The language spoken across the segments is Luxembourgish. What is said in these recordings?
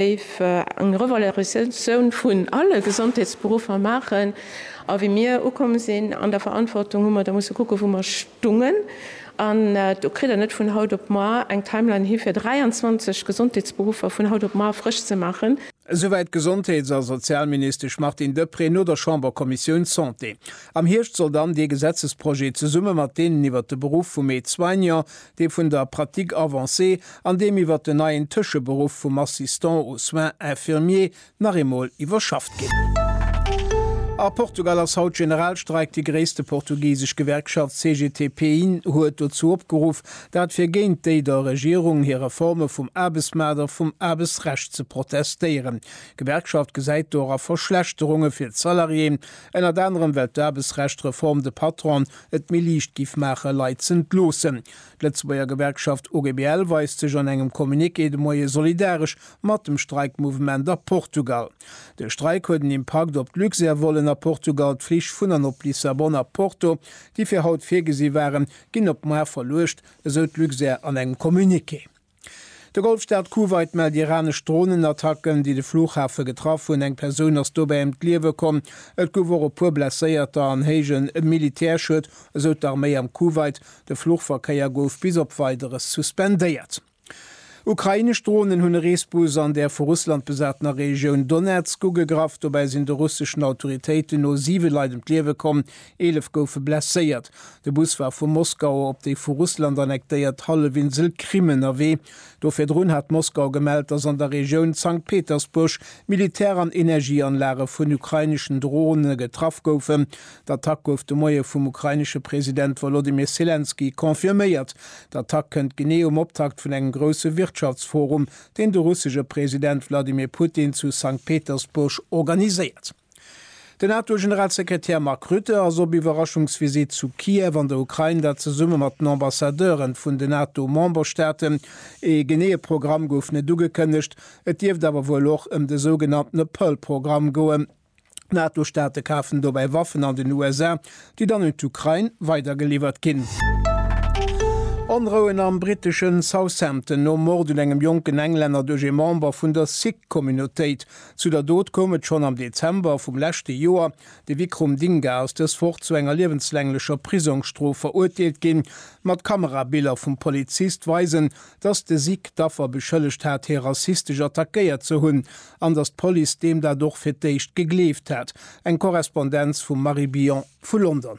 géif eng Revalorisatioun vun alle Gesondheetsberuffer maachen. A wéi mir ukomm sinn an der Verantwortung, hu mer da musse kucken, wou mer stungen. An do kritt Der net vun haut op muer eng Timeline hi fir 23 Gesondheetsberuffer vun haut op muer frësch ze maachen. Esouwäit d'Gesondheets a Sozialministesch Martine Deprez no der Chamberkommissioun Santé. Am Hierscht soll dann dee Gesetzesprojet zesumme mat deenen iwwert de Beruff vum Aide-soignant, dee vun der Pratique avancée an deem iwwer den neien Tëscheberuff vum Assistant aux soins infirmiers nach eemol iwwerschafft ginn. A Portugal ass haut Generalstreik. Déi gréisste portugisesch Gewerkschaft CGT-PIN huet dozou opgeruff, dat fir géint déi der Regierung hir Reforme vum Aarbechtsmaart a vum Aarbechtsrecht ze protestéieren. D'Gewerkschaft gesäit dora Verschlechterunge fir d'Salariéen, ënnert anerem well d'Aarbechtsrecht-Reform de Patron et méi liicht giff maache Leit ze entloossen. D'Lëtzebuerger Gewerkschaft OGBL weist sech an engem Communiqué de Moie solidaresch mat dem Streikmouvement a Portugal. De Streik huet en Impakt op d'Luxair-Vollen a Portugal, d'Flich vun an op Lissabon a Porto, déi fir haut virgesi waren, ginn op muar verluecht, esou d'Luxair an engem Communiqué. De Golfstaat Kuwait mellt iranesch Dronenattacken, déi de Flughafe getraff hunn. Eng Persoun ass dobäi ëm d'Liewe komm. Et gouf och e puer Blesséierter an héije Militärschued, esou d'Arméi am Kuwait. De Fluchverkéier gouf bis op Weideres suspendéiert. Ukrainesch Dronen hunn e Reesbus an der vu Russland besatener Regioun Donezk ugegraff. Dobäi sinn de russeschen Autoritéiten no siwe Leit ëm d'Liewe komm. Eelef goufe blesséiert. De Bus war vu Moskau op déi vu Russland annektéiert Hallefinsel Krim ënnerwee. Do virdrun hat Moskau gemellt, datt an der Regioun Sankt Petersburg Militär an Energieanlage vun ukraineschen Drone getraff goufen. D'Attack gouf de Moie vum ukrainesche President Wolodymyr Selenskyj confirméiert. D'Attack kënnt genee um Optakt vun engem grousse Wirtschaftsforum, deen de russesche President Wladimir Putin zu Sankt Petersburg organiséiert. Den NATO-Generalsekretär Mark Rutte ass op Iwwerraschungsvisitt zu Kiew an der Ukrain, dat zesumme mat den Ambassadeuren vun den NATO-Memberstaaten. Ee geneeë Programm gouf net ugekënnegt, et dierft awer wuel och ëm de sougenanntene Pearl-Programm goen. D'NATO-Staate kafen dobäi Waffen an den USA, déi dann un d'Ukrain weidergeliwwert ginn. Onrouen am britteschen Southampton nom Mord un engem jonken Englänner duerch ee Member vun der Sikh-Communautéit. Zu der Dot koum et schonn am Dezember vum leschte Joer. De Vikrum Dinga ass dës Woch zu enger liewenslänglecher Prisongsstrof verurteelt ginn. Mat Kamerabiller vum Polizist weisen, dass de Sic d'Affer beschëllegt hat, hie rassistesch attackéiert ze hunn, an dass d'Police deem dat och fir d'éischt gegleeft hat. Eng Korrespondenz vum Marie Billon vu London.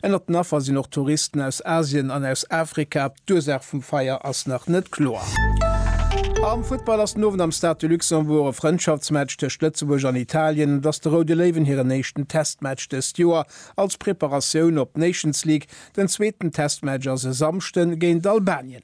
Ënnert den Affer sinn och Touristen aus Asien an aus Afrika. D'Ursaach vum Feier ass nach net kloer. Am Futtball ass den Owend am Stade de Luxembourg e Frëndschaftsmatch tëscht Lëtzebuerg an Italien. Et ass de Roude Léiwen hiren éischten Testmatch dëst Joer als Preparatioun op d'Nations League. Den zweeten Testmatch ass e Samschden géint Albanien.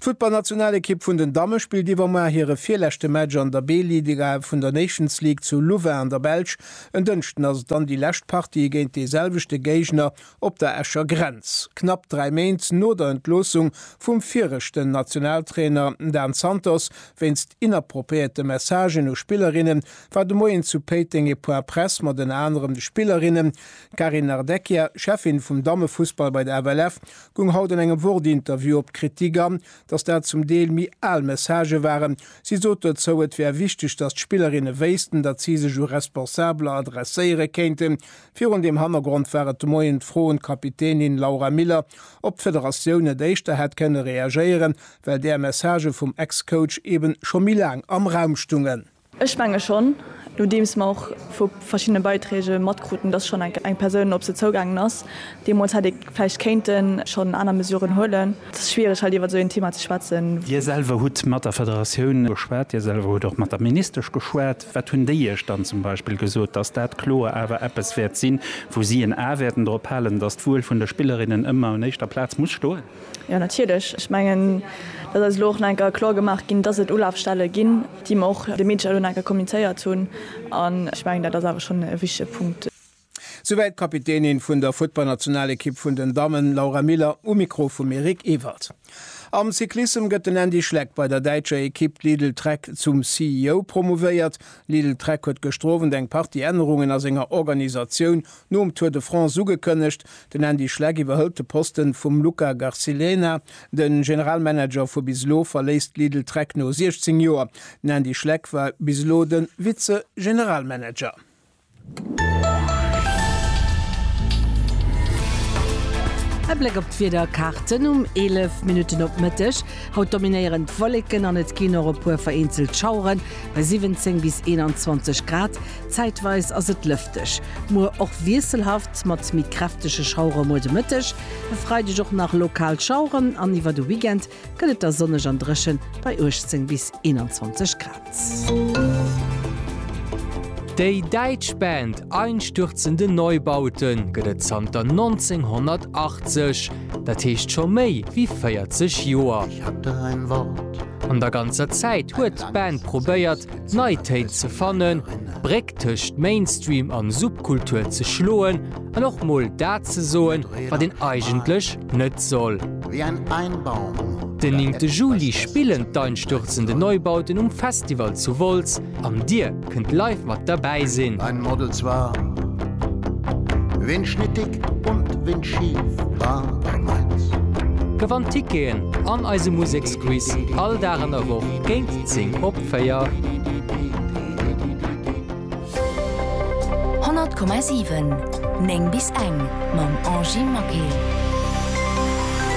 D'Futtballnationalekipp vun den Damme spillt iwwermar hire virleschte Match an der B-Liga vun der Nations League zu Louvain an der Belsch. En Dënschden ass et dann déi lescht Partie géint dee selwechte Géigner op der Escher Grenz. Knapp 3 Méint no der Entloossung vum viregten Nationaltrainer Dan Santos wéinst inappropriéerte Messagen u Spillerinnen, war de Moien zu Péiteng e Point Press mat ënner anerem de Spillerinnen Carine Nardecchia, Cheffin vum Dammefussball bei der FLF, Goung haut an engem Wort-Interview op d'Kritik an, datt dat zum Deel méi al Messagë waren. Si sot dozou, et wär wichteg, datt d'Spillerinne wéissten, datt si sech u Responsabeler adresséiere kéinten. Virun deem Hannergrond war et de Moien d'Fro un d'Kapitänin Laura Miller, ob d'Federatioun net éischter hätt kënne reagéieren, well där Messagë vum Ex-Coach eben scho méi laang am Raum stungen. Ech menge schonn, nodeems mer och vu verschiddene Beiträge matkruten, dass schonn enk eng Persoun op se zougaangen ass, deemools hätt ee vläicht kéinte schonn aner Mesuren huelen. Et ass schwiereg, hei iwwer esou een Thema ze schwätzen. Dir selwer hutt mat der Federatioun geschwat, Dir selwer hutt och mat der Ministesch geschwat. Wat hunn déi Iech dann zum Beispill gesot? Dass dat kloer awer eppes wäert sinn, wou si en A wäerten drop halen, dass d'Wuel vun de Spillerinnen ëmmer un éischter Plaz muss stoen? Jo, natierlech. Ech mengen, dat ass elo och nach eng Kéier kloer gemaach ginn, dass et Ulafstelle ginn, déi mer och de Media elo nach eng Kéier kommunizéiert hunn. An ech mengen, dat ass awer schonn e wichtige Punkt. Souwäit d'Kapitänin vun der Futtballnationalekipp vun den Dammen, Laura Miller, um Mikro vum Eric Ewald. Am Cyclissem gëtt den Andy Schleck bei der däitscher Ekipp Lidl Trek zum CEO promouvéiert. Lidl Trek huet gëschter Owend eng Partie Ännerungen a senger Organisatioun Nom Tour de France ugekënnegt, den Andy Schleck iwwerhëlt de Poste vum Luca Garcilena. De Generalmanager vu bis elo verléisst Lidl Trek no 16 Joer. Den Andy Schleck war bis elo de Vize-Generalmanager. E Bléck op d'Wiederkaarten um 11 Minutten op Mëtteg. Haut dominéieren d'Wolleken an et ginn och e puer vereenzelt Schaueren bei 17 bis 21 Grad. Zäitweis ass et lëfteg, muer och wiesselhaft mat méi kräftege Schauere muer de Mëtteg. E Freideg och nach lokal Schaueren an iwwer de Weekend gëtt et da sonneg an dréchen bei 18 bis 21 Grad. Déi däitsch Band Einstürzende Neubauten gëtt et zanter 1980, dat heescht scho méi wéi 40 Joer. An der ganzer Zäit huet d'Band probéiert, d'Neitéit ze fannen, d'Bréck tëscht Mainstream an Subkultur ze schloen an och mol dat ze soen, wat een eigentlech net soll. Den néngte Juli spillen d'Einstürzende Neubauten um Festival zu Wolz an dir kënnt live mat derbäi sinn. Gewannt Ticketen an eise Museksquiz all Dag an der Woch géint 10 op 4. 100,7 9 bis eng mam Angie Maquet.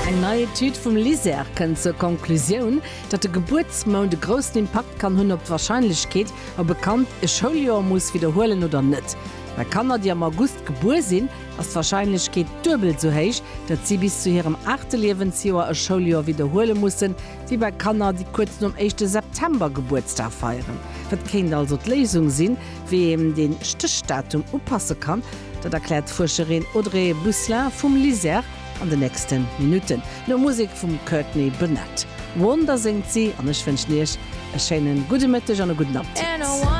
Eng nei Etüd vum LISER kënnt zur Konklusioun, datt de Gebuertsmount e groussen Impakt kann hunn op d'Warscheinlechkeet, ob e Kand e Schouljoer muss widderhuelen oder net. Bei Kanner, déi am August gebuer sinn, ass d'Warscheinlechkeet duebel esou héich, datt si bis zu hirem aachte Liewensjoer e Schouljoer widderhuele mussen, Déi bei Kanner, déi kuerz nom éischte September Gebuertsdag feieren. Wat kéint also d'Léisung sinn, wéi een dee Stéchdatum upasse kann? Dat erkläert d'Fuerscherin Audrey Bousselin vum LISER an den nächste Minutten. No Musek vum Courtney Bennett, Wonder, séngt si an ech wënschen Iech e schéine gudde Mëtteg an e gudden Appetit.